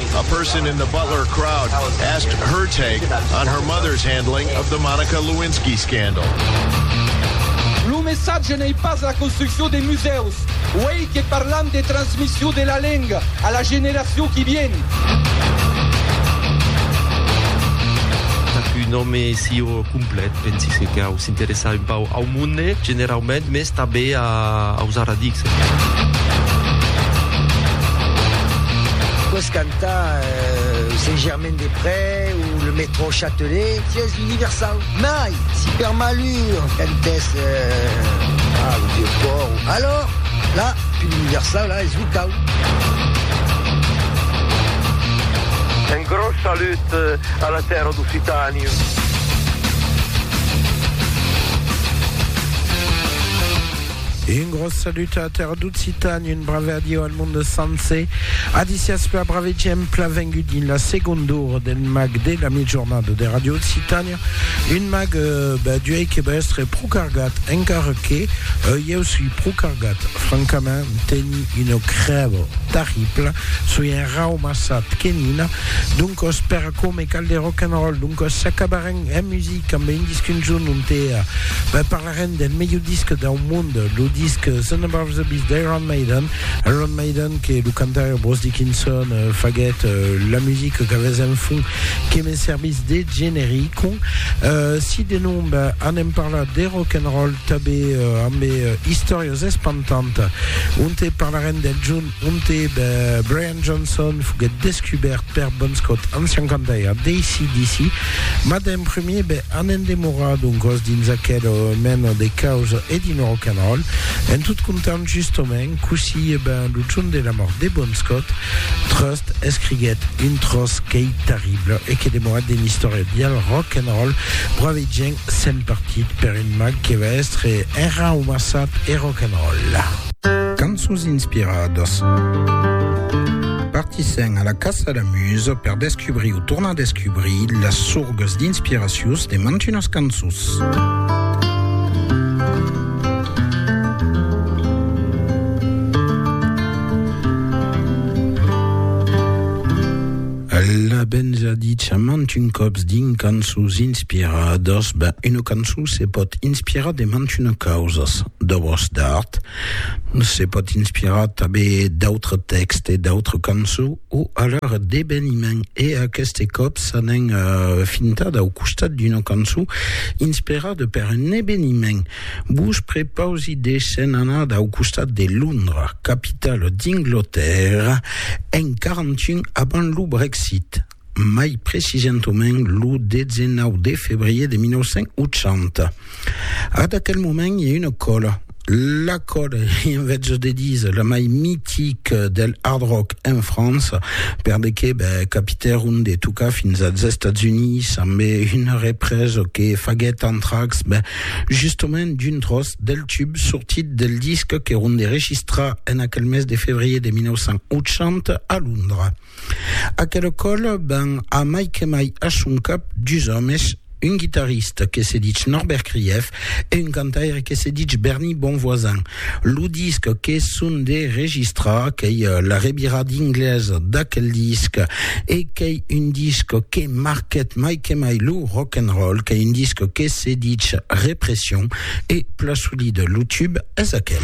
A person in the Butler crowd asked her take on her mother's handling of the Monica Lewinsky scandal. Lo messatge n'ei pas la construccion de musèus, uèi que parlam de transmission de la lenga a la generacion qui vien. Qu'un òme sieu complet, pensi que cau s'interessar un pauc au monde generaument, mès Tanben a ausar a dicse. Pots cantar Saint-Germain des Près o le Métro Châtelet, si es universau. Mai, si per malur cantès a lo Vieu Pòrt, alòr, la, pus universau, la, es locau. Un gròs salut a la tèrra d'Occitània. Un gros salut a Terre d'Occitània, un brave adieu al monde sencer. Adicias per brave gent pla vengut dins la segonda ora del mag de la mitjornada de Radio Occitània. Un mag euh, ben, duei que va estre pro cargat, encara que euh, ieu sui pro cargat. Francament, teni una crèva terribla, sui un raumassat que nina. Doncos, per a coma cal de rock'n'roll, doncos s'acabarem En music amb un disc un jorn onte parlarem del melhor disc dau mond, lo disc Sun Above the Beast d'Iron Maiden, Iron Maiden que lo cantaire Bruce Dickinson faguèt la music qu'avètz en fond que me servís de generico. Si de non ben anem parlar de rock and roll, tanben ambe istòrias espantantas onte parlarem del jorn Monte de Brian Johnson foguèt descubèrt per Bon Scott en 51 d'ACDC, mas d'en premier be an en demorar doncòs dins aquela mena de caus e dins lo rock and roll. En tot comptant justement cossí, e ben lo jorn de la mòrt de Bon Scott, Trust escriguèt un tròç qu'ei terrible e que demora dins l'istòria dial rock and roll, Brave gent s'en partit per un mag que va èstre enraumassat e rock and roll. Cançons inspiradas. Partissèm a la caça la musa per descubrir o tornar descubrir las sorgas d'inspiracius de mantunas cançons. Al a ben ja dit ça mantun còps dins cançons inspiradas, ben una cançon se pòt inspirar de mantuna causas, d'obras d'art, se pòt inspirar tanben d'autres tèxtes, d'autres cançons o alhora d'eveniments e aqueste còp s'anèn fintada au costat d'una cançon inspirada per un eveniment. Vos prepausi de se'n anar dau costat de Londra, capitala d'Inglotèrra, en 41 abans lo Brexit, mai precisentament lo 19 de febrier de 1980. Ad aquel moment i a una còla, la còla, i en vezos de disa, la mai mitica del hard rock en França, per de que ben, capitèron de tocar fins als Estats Units ambe una represa que faguèt Anthrax, ben, Justement, d'un tròç del tub sortit del disc que Ronde registra en aquel mes de fevrier de 1980 a Londra. Aquela còl ben a mai que mai a son cap dus òmes, un guitarrista que se ditz Norbert Krief e un cantaire que se ditz Bernie Bonvoisin, Lo disc que son de registrar, qu'ei la revira d'ingles d'aquel disc, e qu'ei un disc que marquèt mai que mai lo rock and roll, qu'ei un disc que se ditz Repression, e pla solida lo tube es aquel.